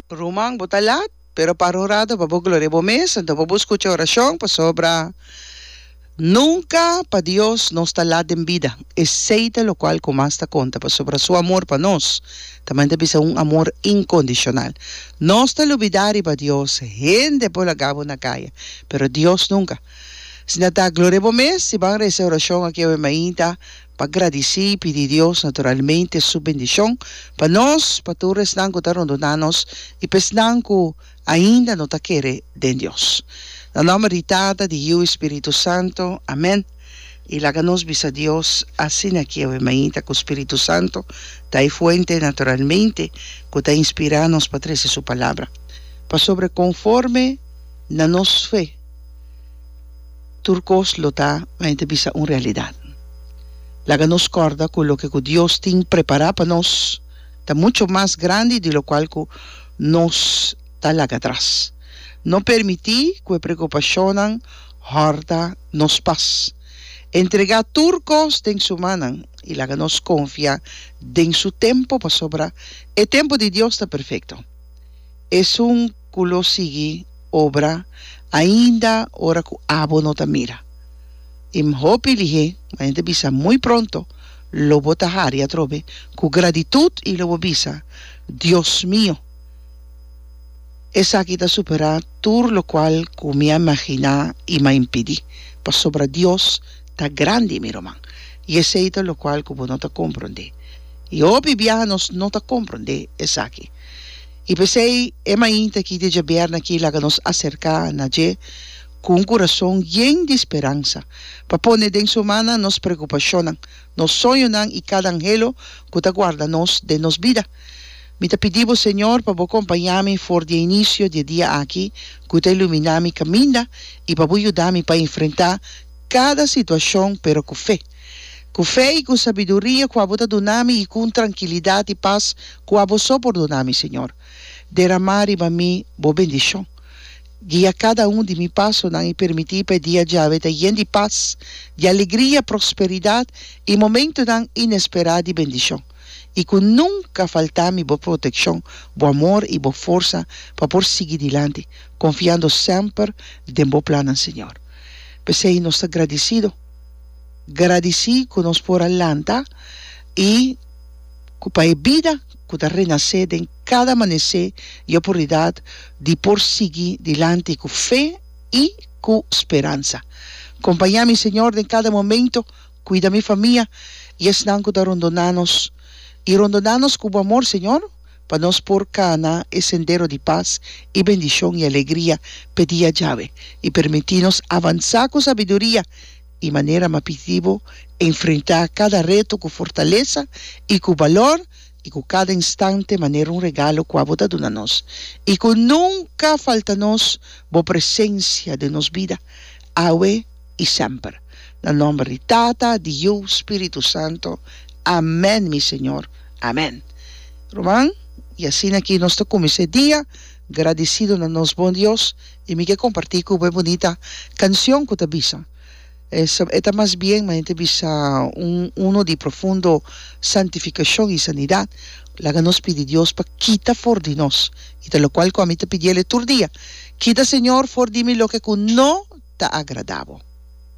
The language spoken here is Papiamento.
Ruman bo ta lat, pero para un rato pa bo gloria bo mes, anto pa bo skucha orashon, pasobra nunka pa Dios nos ta lat den bida, esei ta lokual ku mas ta konta, pasobra su amor pa nos tamen ta bisa un amor inkondishonal. Nos ta lubidá riba Dios, hende por laga bo na kaya, pero Dios nunka. Asina ta, gloria bo mes, si ban resa e orashon aki awe mainta, pa gradici y pidi Dios naturalmente su bendicion pa nos, pa tur esnan cu ta rondonan nos y pa esnan cu ainda no ta kere den Dios. Na nomber di Tata, di Yiu y Spiritu Santo, amen. Y laga nos bisa Dios asina kiewe mainta cu Spiritu Santo ta e fuente naturalmente cu ta inspira nos pa trece su Palabra. Pasobra conforme na nos fe. Tur kos lo ta pa hende bisa un realidat. Laga nos kòrda ku loke ku Dios tin prepará pa nos ta mucho mas grandi di lokual ku nos ta laga atras. No permití ku e preokupashonnan hòrta nos pas. Entregá tur kos den Su mannan i laga nos konfia den Su tempu pasobra e tempu di Dios ta perfekto. Esun. ku lo sigui obra ainda ora ku abo no ta mira. I M hopi lihé, ma N ta bisa muy pronto lo bo ta hari atrobe ku gratitut i lo bo bisa, Dios mio, esaki ta superá tur lokual ku mi a imaginá i m'a impidí, pasobra Dios ta grandi, mi ruman, i esei ta lokual ku bo no ta komprondé. I hopi biaha nos no ta komprondé esaki. I p'esei e mainta aki di djabièrnè aki laga nos aserká na dje ku un kurason yen di speransa, pa pone den su mannan nos prekupashonnan, nos soñonan i kada anhelo ku ta guarda nos den nos bida. Mi ta pidi bo, Señor, pa bo kompañá mi for di e inisio di e dia aki ku ta iluminá mi kaminda i pa bo yuda mi pa enfrentá kada situashon, pero ku fe. Ku fe i ku sabiduria ku abo ta duna mi i ku un trankilidat i pas ku abo so por duna mi, Señor, deramá riba mi bo bendishon. Guia kada un di mi pasonan i permití pa e dia djawe ta yen di pas, di alegria, prosperidat i momentunan inesperá di bendishon, i ku nunka faltá mi bo protekshon, bo amor i bo forsa pa por sigui dilanti, konfiando semper den bo plannan, Señor. P'esei nos ta gradisido. gradisí ku nos por a lanta i ku pa e bida ku ta renasé den kada amanesé di opornidat di por sigui dilanti ku fe i ku speransa. Kompañá mi, Señor, den kada momentu, kuida mi famia i esnan ku ta rondona nos i rondona nos ku bo amor, Señor. pa nos por kana e sendero di pas i bendishon i alegria p'e dia djawe, i permití nos avansá ku sabiduria i manera mapitibu, enfrentá kada reto ku fortalesa i ku balor, i ku kada instante manera un regalo kua Bo ta duna nos, i ku nunka falta nos Bo presensia den nos bida, awe. i semper. Na nomber di Tata, di Yu, Spiritu Santo. Amen, mi Señor. Amen. Ruman, i asina ki nos ta kuminsá e dia gradisido na nos bon Dios, i mi ke kompartí ku bo e bunita kanshon ku ta bisa, e ta mas bien manera ta bisa un uno di profundo santifikashon i sanidat. Laga nos pidi Dios pa kita for di nos, i ta lokual ku ami ta pidiel e tur dia, Kita, Señor, for di mi loke ku no ta agrada Bo.